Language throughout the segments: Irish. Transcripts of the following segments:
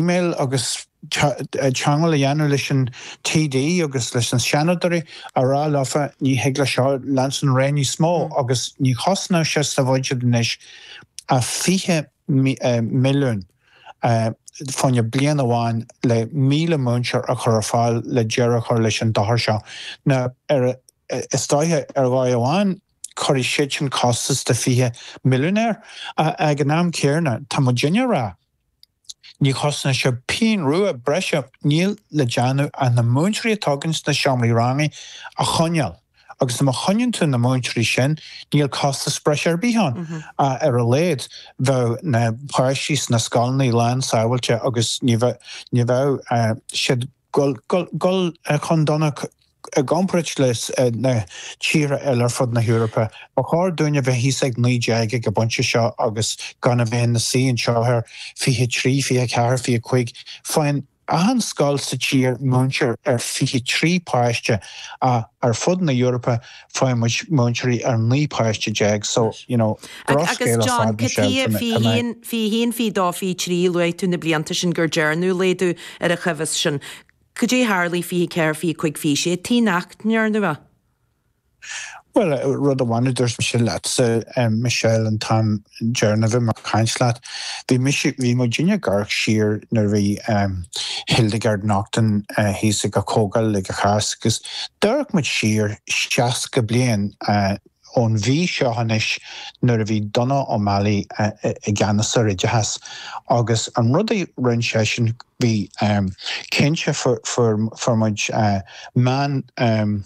Email agus teagmháil a dhéanamh leis an TD agus leis na Seanadoirí a rá leofa ní thig leis seo leanstan ar aghaidh níos mó agus ní chosnódh sé sa bhuiséad anois ach fiche milliún fá choinne bliain amháin le míle múinteoir a chur ar fáil le deireadh a chur leis an dochar seo. Now arís, Tuigim ar dhóigh amháin cuirfidh siadsan costas de fiche milliún air ach ag an am céanna tá muid inne ag rá. Ní chosnaíonn sé pínn rua breise. Níl le déanamh ach na múinteoirí atá againn sna seomraí ranga a choinneáil agus nuair a choinníonn tú na múinteoirí sin níl costas breise ar bith ann ach ar a laghad bheadh na páistí sna scoileanna lán sábháilte agus ní bheadh siad ag gabháil chun donacht, i gcomparáid leis na tíortha eile ar fud na hEorpa, ba chóir dúinn a bheith thíos ag naoi déag ag an bpointe seo agus gan a bheith inár suí anseo ar fiche a trí, fiche a ceathair, fiche a cúig. Faigheann achan scoil sa tír múinteoir ar fiche a trí páiste ach ar fud na hEorpa Faigheann muid múinteoirí ar 19 páiste so you know drochscéal ar fad na seilfeanna. Agus John, fiche a haon, fiche a haon, fiche a dó, fiche a trí, luaigh tú na blianta sin go ndearnadh laghdú ar an chóimheas sin. Cad é a tharlaigh fiche a ceathair, fiche a cúig, fiche a sé nach ndearnadh é. Bhuel, rud amháin a dúirt mise leatsa, Michelle, an t-am deireanach a bhí mé ag caint leat. Bhí mise, bhí muid inne ag amharc siar nuair a bhí ehm Hildegard Naughton thíos ag an chomhdháil ag an Cháisc agus d'amharc muid siar seasca bliain ón mhí seo anois nuair a bhí Donogh O'Malley i gceannas ar oideachas agus an rud a rinn seisean bhí ehm cinnte fuair fuair muid meán ehm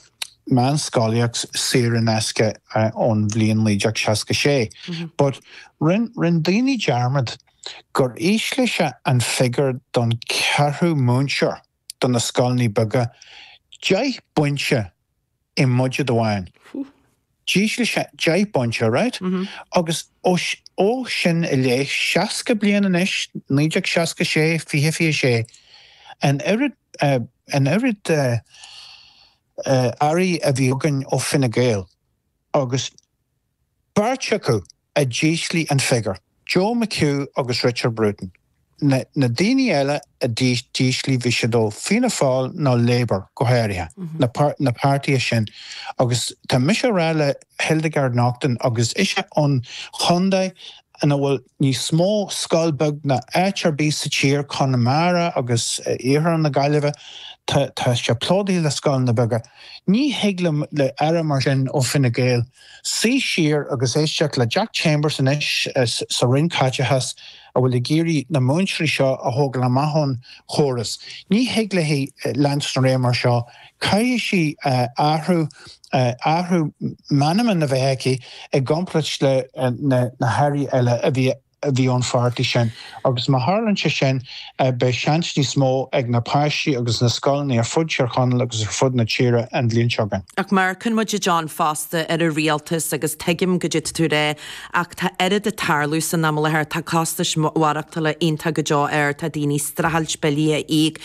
meánscolaíocht saor in aisce ón bhliain 1966. But rinn rinn daoine dearmad gur ísligh sé an figiúr don cheathrú múinteoir do na scoileanna beaga deich bpointe i mbudget amháin. D'ísligh sé deich bpointe, right agus ó shoin i leith, seasca bliain anois, 1966, fiche, fiche sé, an oiread, an oiread Airí a bhí againn ó Fine Gael agus beirt acu a d'ísligh an figiúr. Joe McHugh agus Richard Bruton na daoine eile a d'ísligh bhí siad ó Fianna Fáil nó Labour, go háirithe, na páirtithe sin agus tá mise a rá le Hildegard Naughton agus ise ón chontae ina bhfuil níos mó scoil beag ná áit ar bith sa tír, Conamara agus iarthar na Gaillimhe, tá sé plódaithe le scoileanna beaga, ní thig le Aire mar sin ó Fine Gael, Suigh siar agus éisteacht le Jack Chambers anois sa Roinn Caiteachais a bhfuil ag iarraidh na múinteoirí seo a thógáil amach ón chóras. Ní thig léi leanstan ar aghaidh mar seo. Caithfidh sí athrú, athrú meanman a bheith aici i gcomparáid le na hAirí eile a bhí a bhí ón pháirtí sin. Agus má tharlann sé sin beidh seans níos mó ag na páistí agus na scoileanna ar fud Thír Chonaill agus ar fud na tíre an bhliain seo againn. Ach amharcann muid, a John, fosta ar an rialtas agus tuigim go dtig tú a ráit ach tá oiread ag tarlú san am i láthair, tá costais mhaireachtala iontach go deo ard, tá daoine ag streachailt billí a íoc,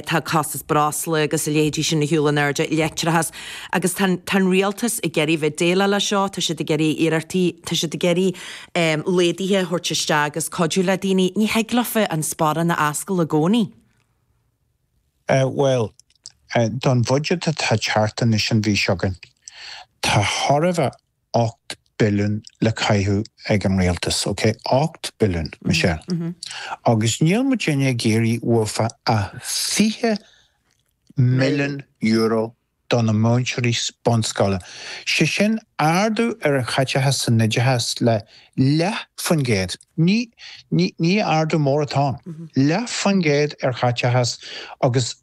tá costas breosla agus a leithéidí sin ag dul in airde, leictreachas. Agus tá an rialtas ag iarraidh bheith déileáil le seo, tá siad ag déanamh iarrachtaí, tá siad ag iarraidh. laghdaithe a thabhairt isteach agus cuidiú le daoine, ní thig leo fiú an sparán a oscailt i gcónaí. Bhuel, don bhudget atá ag teacht anois an mhí seo againn, tá thar a bheith ocht billiún le caitheamh ag an Rialtas, ok? Ocht billiún, Michelle. Agus níl muidinne ag iarraidh thart fá fiche milliún euro do na múinteoirí bunscoile, sé sin ardú ar an chaiteachas san oideachas le leath faoin gcéad, ní ní ardú mór atá ann, leath faoin gcéad ar chaiteachas agus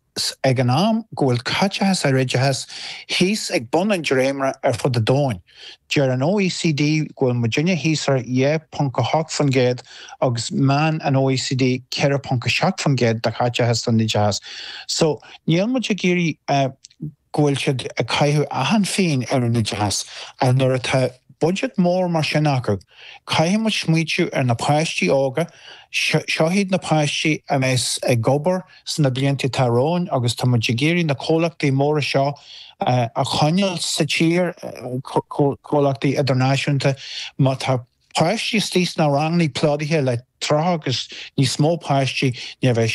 ag an am go bhfuil caiteachas ar oideachas thíos ag bun an dréimire ar fud an domhain. Deir an OECD go bhfuil muidinne thíos ar 2.8% agus meán an OECD 4.7% de chaiteachas don oideachas. So níl muid ag iarraidh go bhfuil siad ag caitheamh achan phingin ar an oideachas. Ach nuair atá budget mór mar sin acu, caithfidh muid smaoitiú ar na páistí óga, seo iad na páistí a bheas ag obair, sna blianta atá romhainn agus tá muid ag iarraidh na comhlachtaí móra seo a choinneáil sa tír, comhlachtaí idirnáisiúnta. Má tá páistí istigh sna rangannaí plódaithe le tríocha agus níos mó páistí, ní bheidh